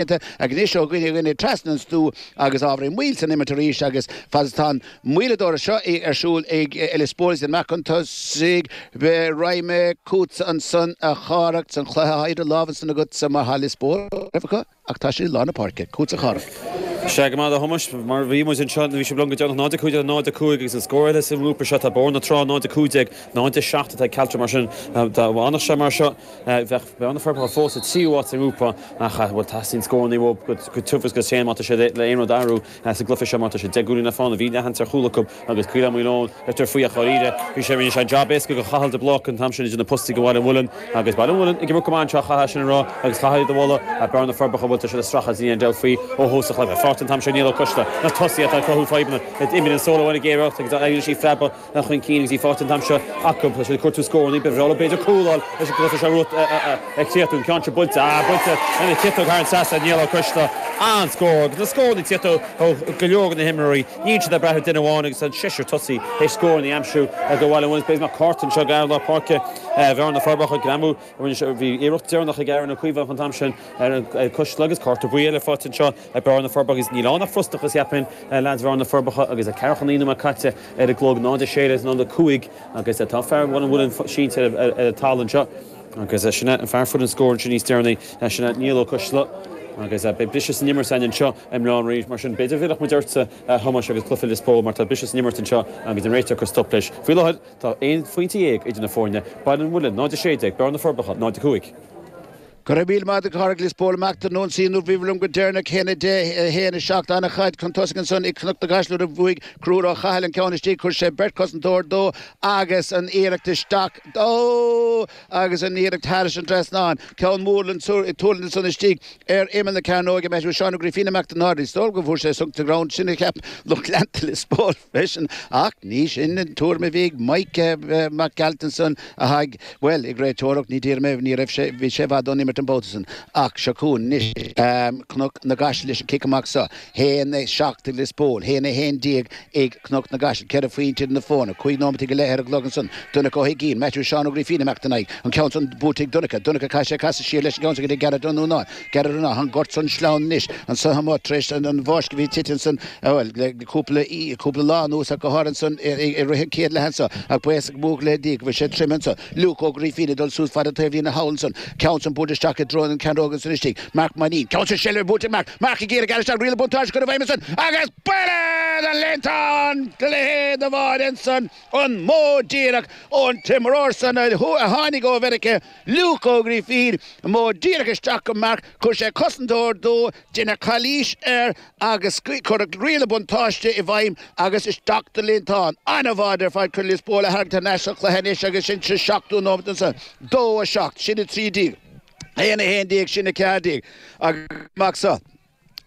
ag aníos ó dhuine go duine trasna an stú agus ábhairín moill san imirt arís agus fad is atá an moilleadóireacht seo ar siúl ag Lios Póil is an meáchan tosaigh raghaidh mé chughatsa ansan a Chárthaigh san chluiche idir lámha san agatsa mar tá Lios Póil roimh acu ach tá siad i lár na páirce chughatsa a Chárthaigh. Sea go raibh maith agat a Thomáis, mar a bhí muid anseo nuair a bhí sibh liom go deireanach, 0-15, 0-5 agus an scór eile sa ngrúpa seo tá Bóthar na Trá, 0-15, 0-7 atá ag Caltra mar sin dá bhfanfadh sé mar seo. Bheadh Bearna na Forbacha fós sa tríú háit sa ngrúpa ach bhuel, teastaíonn scóranna uathu go tiubh agus go tréan má tá siad le aon rud a athrú sa gcluiche seo mar tá siad deich gcúilín le fána bhí leathsheans ar chúl acu agus Coill Átha Maoil Eoin, Leitir Fraoich dháiríre, bhí sé, rinne sé jab éasca do Chathal de Bláca an t-am sin idir na postaí do Bhaile an Mhuilinn agus Baile an Mhuilinn ag imirt go maith anseo chaithfeá sin a rá agus chaithfeá iad a mholadh Bearna na Forbacha bhuel tá siad ag stracadh as Ian Delphy ó thús an chluiche, faighte an t-am seo ag Niall Ó Coisdeala, na tosaithe atá ag cruthú fadhbanna d'imir an Somhairle Mac Gearailt agus d'fhaighilís í phreabadh chun cinn agus í faighte an t-am seo acu. Tá sé ag cuartú scóranna ag Biffre, óir b'fhéidir cúl leis an gcluiche seo romhat a chríochnú. An ceann seo buailte, ah buailte lena chiotóg thar an trasnán, Niall Ó Coistealla an-scór agus na scóranna ag tíocht ó go leor de na himreoirí. Níl siad ag brath ar duine amháin agus tá an seisear tosaigh tar éis scóranna a aimsiú do Bhaile an Mhuilinn. B'fhéidir nach cárta anseo ag fear lár páirce Bhearna na Forbacha, a ghreamú. Bhí iarracht deireanach ag Aaron Ó Caomhánaigh an t-am sin ar Ó Coistealla agus cárta buí eile faighte anseo. Ag Bearna na Forbacha agus níl ann ach frustrachas, cheapfainn, leaids Bhearna na Forbacha agus ceathracha naoi nóiméad caite ar an gclog, 0 16, 0 5 agus tá fear Bhaile an Mhuilinn sínte ar an talamh anseo agus sin é an fear fuair an scór ansin níos deireanaí, sin é Niall Ó Coisdeala agus beidh briseadh san imirt againn anseo i mBleá an Rí mar sin b'fhéidir bhéarfadh muid ortsa a Thomáis agus cluiche Lios Póil mar tá briseadh san imirt anseo agus an réiteoir ag cur stop leis. Faoi láthair tá aon phointe dhéag idir na foirne, Baile an Mhuilinn 0 16, Bearna na Forbacha 0 5. Go raibh míle maith agat a Chárthaigh Lios Póil amach ar an ionsaí nuair a bhíobhair liom go deireanach haon a deich haon a seacht an chaid chun tosaigh ansan ag Cnoc na gCaiseal nuair a bhuaigh Conchúr Ó Cathail an ceann istigh chuir sé beirt cosantóir dó agus an iarracht isteach dó agus an iarracht thairis an trasnán ceann mór linn tuairim ansan istigh ar imeall na cearnóige Maitiú Seán Ó Grífín amach don Náirnín Is dóigh go bhfuair sé sonc sa drom sin a cheap lucht leanta Lios Póil freisin ach ní sin an tuairim a bhí ag Maidhc Mac Gearailt ansan Atá, bhuel, ag réiteoireacht, ní d'iarr mé, ní raibh sé, bhí sé i bhfad ón imirt an babhta san, ach seo chugainn anois Cnoc na gCaiseal leis an cic amach seo, haon a seacht ag Lios Póil, haon a haon déag ag Cnoc na gCaiseal, ceithre phointe idir na foirne, cúig neomataí go leith ar an gclog ansan, Donncha Ó hUigínn, Maitiú Seán Ó Grífín amach ina aghaidh an ceann san buaite ag Donncha, Donncha caithfidh sé casadh siar leis an gceann san go dtí Gareth Ó Nuanáin, Gareth tá an gort an-sleamhain anois annso amuigh tar éis an bháisteach a bhí ag titim annsan bhuel le cúpla lá anuas ach go háirithe annsan i rith an chéad leath annso ach buíochas mór le Dia go bhfuil sé tirim annso. Liúc Ó Grífín ag dul suas fada taobhlíne thall annsan ceann san buailte isteach i dtreo an chearnóig annsan istigh. Marc Ó Mainín, ceann sa seilbh buaite ag Marc. Marc ag iarraidh isteach riail an bhuntáiste a chur i bhfeidhm annsan agus buille do leantán do leithéid amháin annsan an mó díreach ón t-imreoir san a tháinig ó Mharc Luke Ó Grifín, i modh díreach isteach go mbeadh chuir sé cosantóir dó, deineadh calaois air agus cuireadh riail na buntáiste i bhfeidhm agus isteach don líontán. An-bháide ar fad chun Lios Póil a tharraingt thar n-ais sa chluiche anois agus sin sa seachtú nóiméad ansan 2, 7, sin 13, 1, 11, sin 14 agus amach so.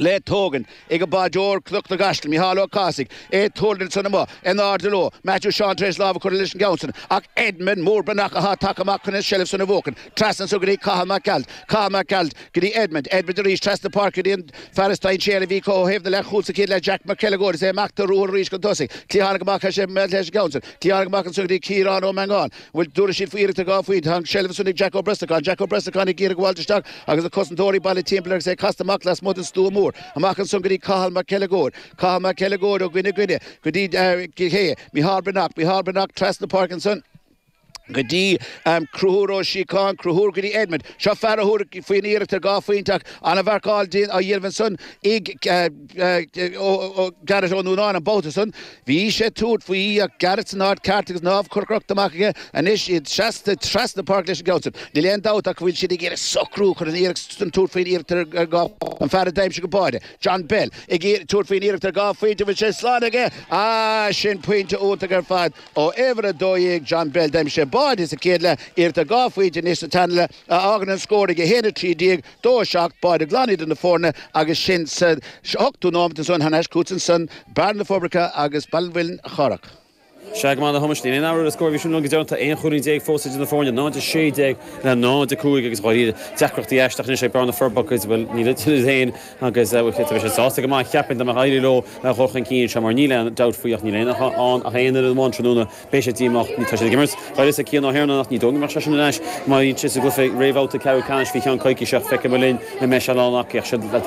le tógaint ag báideoir Chnoc na gCaiseal, Micheál Ó Cathasaigh, é ag tuairgnail san amach in airde leo, Matthew Seán tar éis lámh a chur leis an gceann san ach Edmund Mór Breathnach athá tagtha amach chun an seilbh san a bhuachan, trasna anseo go dtí Cathal Mac Gearailt, Cathal Mac Gearailt go dtí Edmund, Edmund arís trasna páirce go dtí an fear is dainséaraí a bhí acu ó thaobh na leath chúl sa chéad leath Jack Mac Uileagóid is é amach de ruathar arís chun tosaigh, Cliathánaigh amach leis an gceann san, Cliathánaigh amach anseo go dtí Ciarán Ó Mangáin, bhuel an dtabharfaidh siad faoi iarracht ar dhá phointe ach an seilbh ansan ag Jack Ó Brosnacháin, Jack Ó Brosnacháin ag iarraidh gabháilt isteach agus na cosantóirí bailithe timpeall air agus é casta amach lasmuigh den stua mór. Amach ansan go dtí Cathal Mac Uileagóid, Cathal Mac Uileagóid ó dhuine go duine go dtí cé hé, Micheál Breathnach, Micheál Breathnach trasna páirce ansan, go dtí Conchúr Ó Síocháin, Conchúr go dtí Edmond. Seo fear a thabharfadh faoin iarracht ar dhá phointe ach an-mharcáil á dhéanamh ansan ag Gareth Ó Nuanáin an babhta san. Bhí sé ag tabhairt faoi ach Garret san áit cheart agus an lámh curtha crochta amach aige anois, iad seasta trasna páirce leis an gceann san. Níl aon dabht ach go bhfuil siad ag iarraidh socrú chun an iarracht san tabhairt faoin iarracht ar dhá phointe, an fear a d'aimsigh an báide, John Bell, ag tabhairt faoin iarracht ar dhá phointe, bhfuil sé slán aige? Ah, sin pointe iontach ar fad ó uimhir a dó dhéag, John Bell. D'aimsigh sé báide sa chéad leath, iarracht ar dhá phointe anois sa tarna leath a fhágann an scór ag 1:13, dó a seacht báide glan idir na foirne agus sin sa ochtú nóiméad ansan. Anois chugatsa ansan Bearna na Forbacha agus Baile an Mhuilinn, a Chárthaigh. Sea, go maith a Thomáis, níl aon athrú ar an scór ó bhí sibh linn go deireanach, tá aon chúilín déag fós idir na foirne, 0-16 le 0-5 agus dháiríre deacrachtaí aisteach anois ag Bearna na Forbacha, bhuel níl idir iad féin agus bhuel bheadh sé sásta go maith a cheapfainn dá mbeadh éirí leo a dhul chun cinn anseo mar níl aon dabht faoi ach níl aon fhios ann ach aon fhoireann amháin tráthnóna Beidh siad díomách, tá siad ag imirt d'uireasa Cian Ó hIarnáin, ach ní dóigh go mbeadh seisean ar ais má bhíonn siad sa gcluiche réamhbhabhta ceathrú ceannais faoi cheann coicíse ach feicfidh muid linn an mbeidh sé in ann a fhaic siad.